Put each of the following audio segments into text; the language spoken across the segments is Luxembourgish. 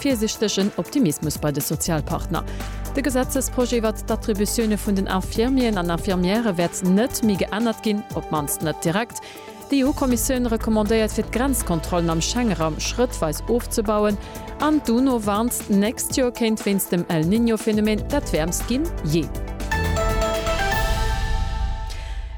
Virsichtegen Optimismus bei de Sozialpartner. De Gesetzesprojet iwwert d'Attributioune vun den Infirmieren an Infirmièrë wäert net méi geännert ginn, op d'mannst net direkt. D'EU-Kommissioun recommandéiert fir d'Grenzkontrollen am Schengeraum schrëttweis ofzebauen an d'UNO warnt, d'nächst Joer kéint wéinst dem El Niño-Phänomen dat wäermst ginn jee.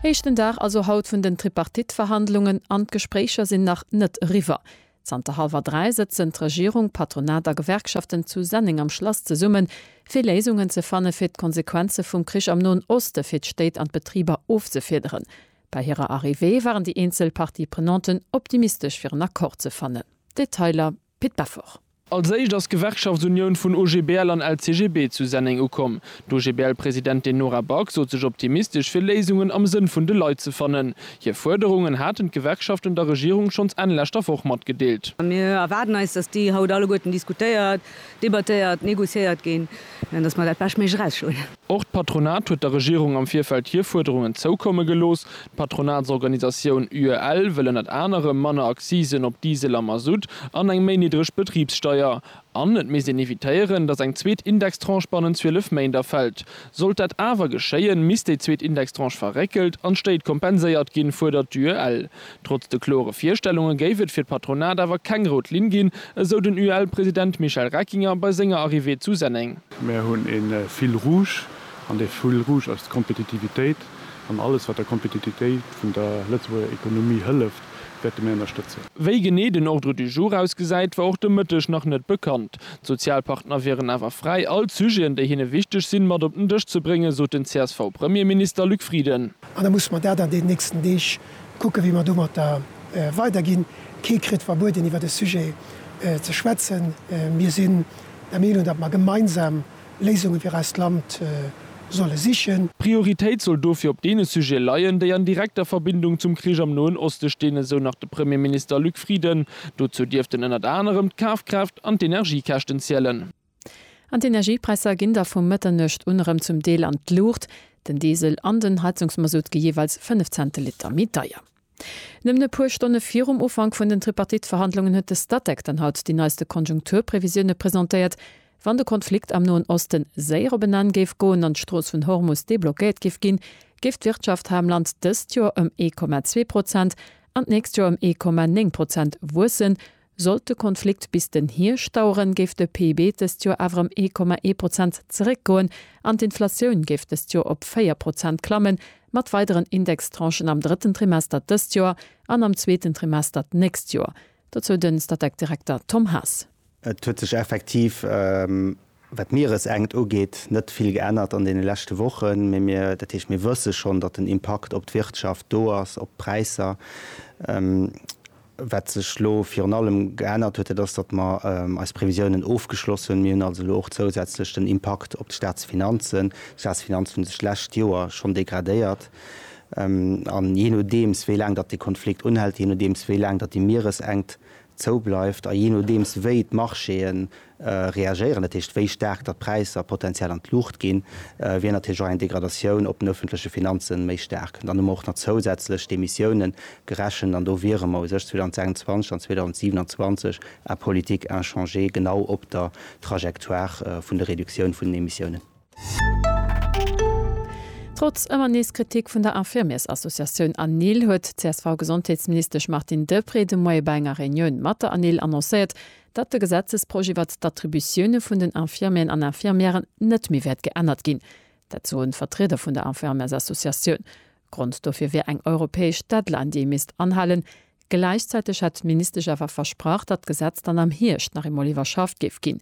Éischten Dag also haut vun den Tripartite-Verhandlungen an d'Gespréicher sinn nach net eriwwer. Zanter hallwer dräi sëtzen d'Regierung, Patronat a Gewerkschaften zu Senneng am Schlass zesummen, fir Léisungen ze fanne fir d'Konsequenze vum Krich am Noen Oste fir d'Stéit an d'Betriber ofzefiederen. Bei hirer Arrivée waren déi eenzel Parties prenanten optimistesch fir en Accord ze fannen. Detailer, Pit Beffort. Als éischt ass d'Gewerkschaftsunioun vun OGBL an LCGB zu Senneng ukomm. D'OGBL-Presidentin Nora Back sot sech optimistesch, fir Léisungen am Sënn vun de Leit ze fannen. Hir Fuerderungen haten d'Gewerkschaften der Regierung schonns Enn leschter Woch matgedeelt. Mir erwaarden eis, datt déi haut alleguerten diskutéiert, debattéiert, négociéiert ginn, an datt mer dat beschtméiglech erausschloen. Och d'Patronat huet der Regierung am Virfeld hir Fuerderungen zoukomme gelooss. D'Patronatsorganisatioun UEL wëll ënnert anerem manner Accisen op Diesel a Masutt an eng méi niddreg Betribssteier. An et misst een evitéieren, datt eng zweet Indextranche bannent 12 Méint erfält. Sollt dat awer geschéien, misst déi zweet Indextranche verréckelt an d'Stéit kompenséiert ginn, fuerdert d'UEL. Trotz de klore Virstellunge géif et fir d'Patronat awer keng rout Linn ginn, esou den UEL-President Michel Reckinger bei senger Arrivée zu Senneng. Mir hunn e Fil rouge, an dee Fil rouge ass d'Kompetitivitéit an alles, wat der Kompetitivitéit vun der Lëtzebuerger Ekonomie hëlleft. wäerte mir ënnerstëtzen. Wéi genee den Ordre du jour ausgesäit, war och de Mëtteg nach net bekannt. D'Sozialpartner wieren awer fräi, all d'Sujeten, déi hinne wichteg sinn, mat op den Dësch ze bréngen, sot den CSV-Premierminister Luc Frieden. An da musse mer dat an deenen nächsten Deeg kucken, wéi mer domatter weiderginn. Kee kritt verbueden, iwwer e Sujet ze schwätzen. Mir sinn der Meenung, datt mer gemeinsam Léisunge fir eist Land solle sichen. D'Prioritéit soll dofir op deene Sujete leien, déi an direkter Verbindung zum Krich am Noen Oste stinn, esou nach de Premierminister Luc Frieden. Dozou dierften ënnert anerem d'Kafkraaft an d'Energiekäschten zielen. An d'Energiepräisser ginn da vu Mëtternuecht un erëm zum Deel an d'Luucht. Den Diesel an den Heizungsmasutt gi jeeweils 5 Cent de Liter méi deier. Nëmmen e puer Stonne virum Ufank vun den Tripartite-Verhandlungen huet de Statec dann haut déi neiste Konjunkturprevisioune presentéiert. Wann de Konflikt am Noen Osten séier op en Enn géif goen an d'Strooss vun Hormus deblockéiert géif ginn, géif d'Wirtschaft ham Land dëst Joer ëm ee Komma zwee Prozent an d'nächst Joer ëm ee Komma néng Prozent wuessen, Sollt de Konflikt bis den Hierscht daueren, géif de PIB dëst Joer awer ëm ee Komma ee Prozent zeréckgoen an d'Inflatioun géif dëst Joer op véier Prozent klammen, mat weideren Indextranchen am drëtten Trimester dëst Joer an am zweeten Trimester d'nächst Joer. Dozou den Statec-Direkter Tom Haas. Et huet sech effektiv Wat d'Mieresenkt ugeet, net vill geännert an deene leschte Wochen, mee mir, dat heescht, mir wësse schonn, datt den Impakt op d'Wirtschaft do ass, op d'Präisser. Wat sech elo virun allem geännert huet, dat ass, datt mer eis Previsiounen ofgeschloss hunn. Mir hunn also elo och zousätzlech den Impakt op d'Staatsfinanzen. D'Staatsfinanzen hunn sech d'lescht Joer schonn degradéiert. An jee nodeems, wéi laang datt dee Konflikt unhält, jee nodeems, wéi laang datt déi Mieresenkt zou bleift, a jee nodeems wéi d'Marchéë reagéieren, dat heescht wéi staark datt d'Präisser potenziell an d'Luucht ginn, wier natierlech och eng Degradatioun op den öffentleche Finanze méi staark. Dann hu mer och nach zousätzlech d'Emissiounen gerechent an do wiere mer u sech 2026 an 2027 en politique inchangée genau op der Trajectoire vun der Reduktioun vun den Emissiounen. Trotz ëmmer nees Kritik vun der Infirmiers-Associatioun ANIL huet d'CSV-Gesondheetsministesch Martine Deprez de Moie bei enger Reunioun mat der ANIL annoncéiert, datt de Gesetzesprojet iwwert d'Attributioune vun den Infirmieren an Infirmièren net méi wäert geännert ginn. Dat soen d'Vertrieder vun der Infirmiers-Associatioun. Grond dofir wier eng europäesch Deadline, déi ee misst anhalen. Gläichzäiteg hätt d'Ministesch awer versprach, datt d'Gesetz dann am Hierscht nach eemol iwwerschafft géif ginn.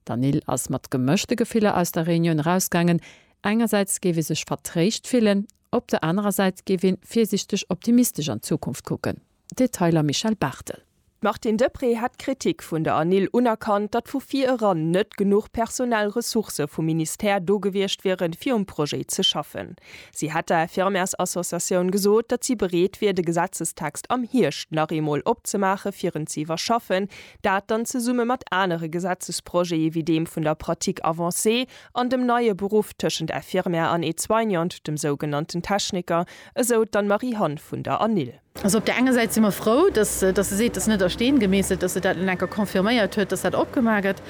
D'Anil ass mat gemëschte Gefiller aus der Reunioun erausgaangen, Engersäits géif ee sech vertréischt fillen, op der anerer Säit géif ee virsiichteg optimistesch an d'Zukunft kucken. Detailer Michèle Barthel. D'Martine Deprez hätt d'Kritik vun der Anil unerkannt, datt vu vir eran net genuch personell Ressourcë vum Ministère do gewiescht wieren, fir um Projet ze schaffen. Si hätt der Infirmärsassociatioun gesot, datt si bereet wier, de Gesetzestext am Hierscht nach eemol opzemaachen, fir en ze iwwerschaffen, Dat dann zesumme mat anere Gesetzesprojete wéi deem vun der Pratique avancée an dem neie Beruff tëschent Infirmière an Aide-soignante, dem sougenannten Techniker, esou d'Anne-Marie-Hann vun der ANIL. Also op där enger Säit si mer frou, dass se seet, dat ass net a Steen gemeesselt, dass se dat elo nach eng Kéier confirméiert huet, dass dat opgemaach gëtt.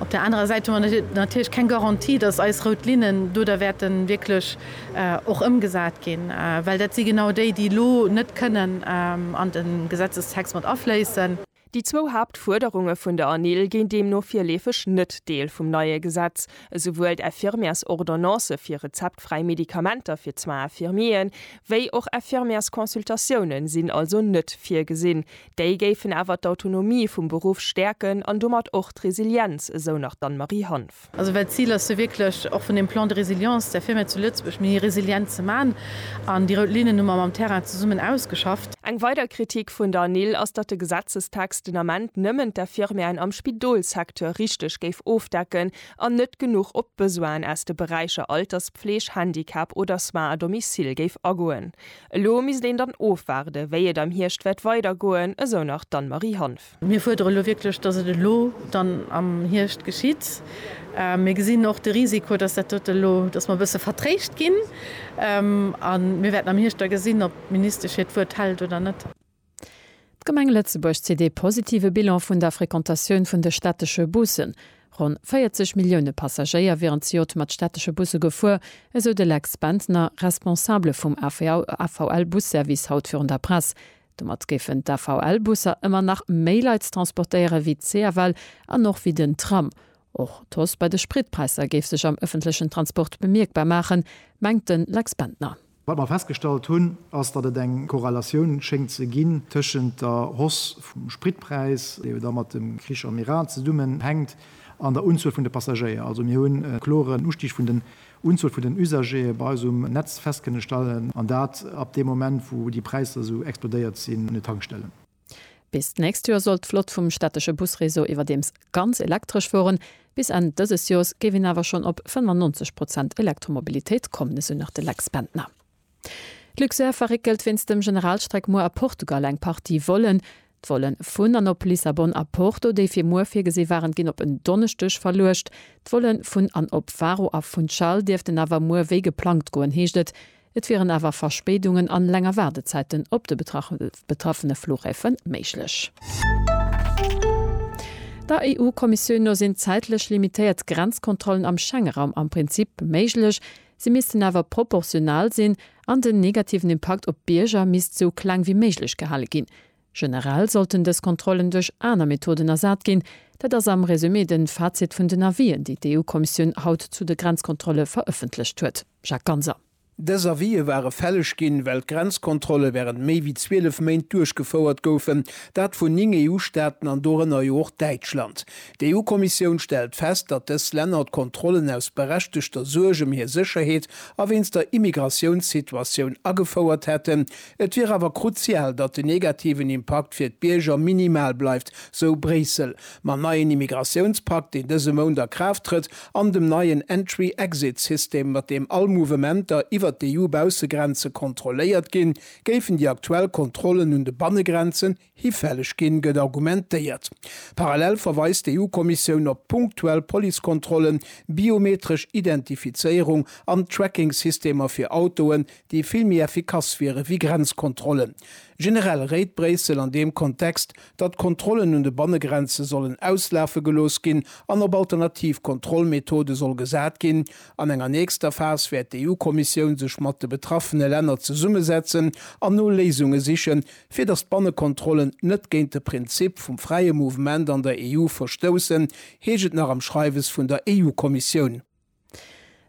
Op där anerer Säit hu mer natierlech keng Garantie, dass eis rout Linnen do da wäerte wierklech och ëmgesat ginn, well dat si genau déi, déi elo net kënnen an de Gesetzestext mat afléissen. Déi zwou Haaptfuerderunge vun der ANIL ginn deemno virleefeg net Deel vum neie Gesetz. Esouwuel d'Infirmièresordonnance fir rezeptfräi Medikamenter fir d'Soins infirmiers wéi och Infirmièresconsultatioune sinn also net virgesinn. Déi géifen awer d'Autonomie vum Beruff stäerken an domat och d'Resilienz, esou nach d'Anne-Marie Hanff. Also well d'Zil ass jo wierklech, och vun deem Plan de résilience, der Firma zu Lëtzebuerg méi resilient ze maachen. An déi rout Linnen hu mer mam Terrain zesummen ausgeschafft. Eng weider Kritik vun der NIL ass, datt de Gesetzestext den Ament nëmmen d'Infirmièren am Spidolssecteur richteg géif ofdecken an net genuch op d'Besoinen aus de Beräicher Alterspfleg, Handicap oder Soins à domicile géif agoen. Elo misst een dann ofwaarden, wéi et am Hierscht wäert weidergoen, esou nach d'Anne-Marie Hanff. Mir fuerdere elo wierklech, dass et elo dann am Hierscht geschitt. Mir gesinn och de Risiko, dass dat dote elo, dass mer e bësse vertréischt ginn. A mir wäerten am Hierscht da gesinn, ob d'Ministesch hiert Wuert hält oder net. D'Gemeng Lëtzebuerg zitt ee positive Bilan vun der Frequentatioun vun de städtesche Bussen. Ronn 40 Millioune Passagéier wieren zejoert mat städtesche Busse gefuer, esou de Lex Bentner, Responsabele vum AVL-Busservice haut virun der Press. Domat géifen d'AVL-Busser ëmmer nach méi Leit transportéieren, wéi d'CFL an och wéi den Tram. Och d'Hausse bei de Spritpräisser géif sech am ëffentlechen Transport bemierkbar maachen, mengt de Lex Bendtner. Wat mer festgestallt hunn, ass, datt et eng Korrelatioun schéngt ze ginn tëschent der Hausse vum Spritpräis, déi jo da mat dem Krich am Iran zesummenhänkt, an der Unzuel vun de Passagéier. Also mir hunn e kloren Ustig vun de Unzuel vun den Usagere bei eis um Netz festkënne stellen, an dat ab deem Moment wou déi Präisser esou explodéiert sinn un den Tankstellen. Bis d'nächst Joer soll d'Flott vum städtesche Busreseau iwwerdeems ganz elektresch fueren. Bis Enn dëses Joers géif een awer schonn op 95 Prozent Elektromobilitéit kommen, esou nach de Lex Bendtner. D'Luxair verréckelt wéinst dem Generalstreck muer a Portugal eng Partie Vollen. D'Volle vun an op Lissabon a Porto, déi fir muer virgesi waren, ginn op en Donneschdeg verluecht. D'Volle vun an op Faro a Funchal dierften awer muer wéi geplangt goen, heescht et. Et wieren awer Verspéidungen an länger Waardezäiten op de betraffene Flughäfe méiglech. Der EU-Kommissioun no sinn zäitlech limitéiert Grenzkontrollen am Schengeraum am Prinzip méiglech. Si missten awer proportional sinn an den negativen Impakt op d'Bierger misst sou kleng wéi méiglech gehale ginn. Generell sollten dës Kontrollen duerch aner Methoden ersat ginn. Dat ass am Resumé de Fazit vun den Avisen, déi d'EU-Kommissioun haut zu de Grenzkontrolle verëffentlecht huet. Jacques Ganser. Dës Avise ware fälleg ginn, well d'Grenzkontrolle wärend méi wéi 12 Méint duerchgefouert goufen, dat vun 9 EU-Staaten an dorënner jo och Däitschland. D'EU-Kommissioun stellt fest, datt dës Länner d'Kontrollen aus berechtegter Suerg ëm hir Sécherheet a wéinst der Immigratiounssituatioun agefouert hätten. Et wier awer kruzial, datt den negativen Impakt fir d'Bierger minimal bleift, sou Bréissel. Mam neien Immigratiounspakt, deen dëse Mount a Kraaft trëtt, an dem neien Entry-Exit-System, mat deem all Mouvementer iwwer d'EU-Baussegrenze kontrolléiert ginn, géifen déi aktuell Kontrollen un de Bannegrenzen, Hifälleg ginn, gëtt argumentéiert. Parallel verweist d'EU-Kommissioun op punktuell Policekontrollen, biometresch Identifizéierung an Trackingsystemer fir Autoen, déi vill méi effikass wiere wéi Grenzkontrollen. Generell réit Bréissel an deem Kontext, datt Kontrollen un de Bannegrenze sollen auslafe gelooss ginn an op alternativ Kontrollmethode soll gesat ginn. An enger nächster Phas wäert d'EU-Kommissioun sech mat de betraffene Länner zesummesetzen an no Léisunge sichen, Fir datt d'Bannekontrollen net géint de Prinzip vum fräie Mouvement an der EU verstoussen, heescht et nach am Schreiwes vun der EU-Kommissioun.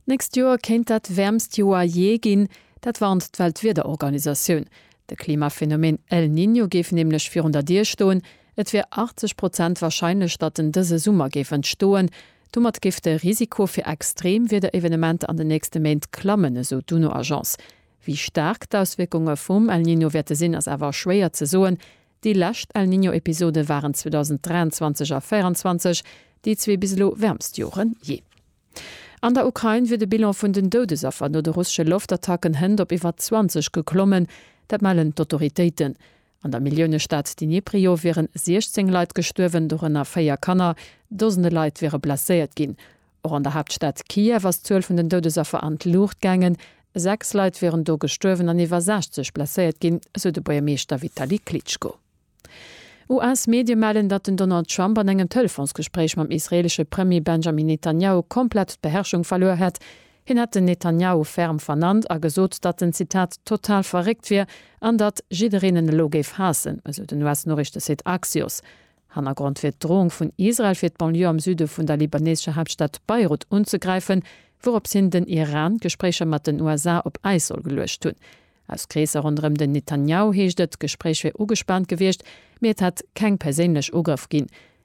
D'nächst Joer kéint dat wäermst Joer jee ginn. Dat warnt d'Weltwiederorganisatioun. De Klimaphenomeen El Niño géif nämlech virun der Dier stoen. Et wier 80 Prozent warscheinlech, datt en dëse Summer géif entstoen. Domat géif de Risiko fir extreem Wiederevenementer an den nächste Méint klammen, esou d'UNO-Agence. Wéi staark d'Auswierkunge vum El Niño wäerte sinn, ass awer schwéier ze soen. Déi lescht El Niño-Episode waren 2023 a 2024 déi zwee bis elo wäermst Jore jee. An der Ukrain wier de Bilan vun den Doudesaffer no de russesche Loftattacken hënt op iwwer 20 geklommen. Dat mellen d'Autoritéiten. An der Milliounestad Dniprio wieren 16 Leit gestuerwen, dorënner véier Kanner. Dosende Leit wiere blesséiert ginn. Och an der Haaptstad Kiew ass d'Zuel vun den Doudesaffer an d'Luucht gaangen. Sechs Leit wieren do gestuerwen an iwwer 60 blesséiert ginn, sou de Buergermeeschter Vitali Klitschko. US-Medie mellen, datt den Donald Trump an engem Telefonsgespréich mam israeelesche Premier Benjamin Netanjahu komplett d'Beherrschung verluer hätt. Hien hätt den Netanjahu ferm vernannt a gesot, datt en, Zitat, total verréckt wier an datt jiddereen en elo géif haassen, esou den US-Noriichtesite Axios. Hannergrond wier d'Droung vun Israel, fir d'Banlieue am Süde vun der libaneesescher Haaptstad Beirut unzegräifen, wourops hin den Iran d'Gespréicher mat den USA op Äis soll geluecht hunn. Aus Kreesser ronderëm den Netanjahu heescht et, d'Gespréich wier ugespaant gewiescht, mee et hätt keng perséinlech Ugrëff ginn.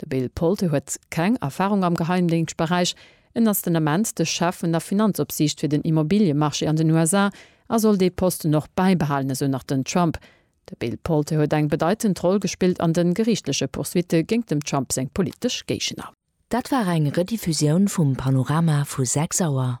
De Bill Polte huet keng Erfarung am Geheimdéngschtberäich. En ass den Ament de Chef vun der Finanzopsiicht fir den Immobiliemarché an den USA a soll dee Posten och bäibehalen, esou nach den Trump. De Bill Polte huet eng bedeitend Roll gespillt an de geriichtleche Poursuitte géingt dem Trump seng politesch Géigner. Dat war eng Rediffusioun vum Panorama vu 6 Auer.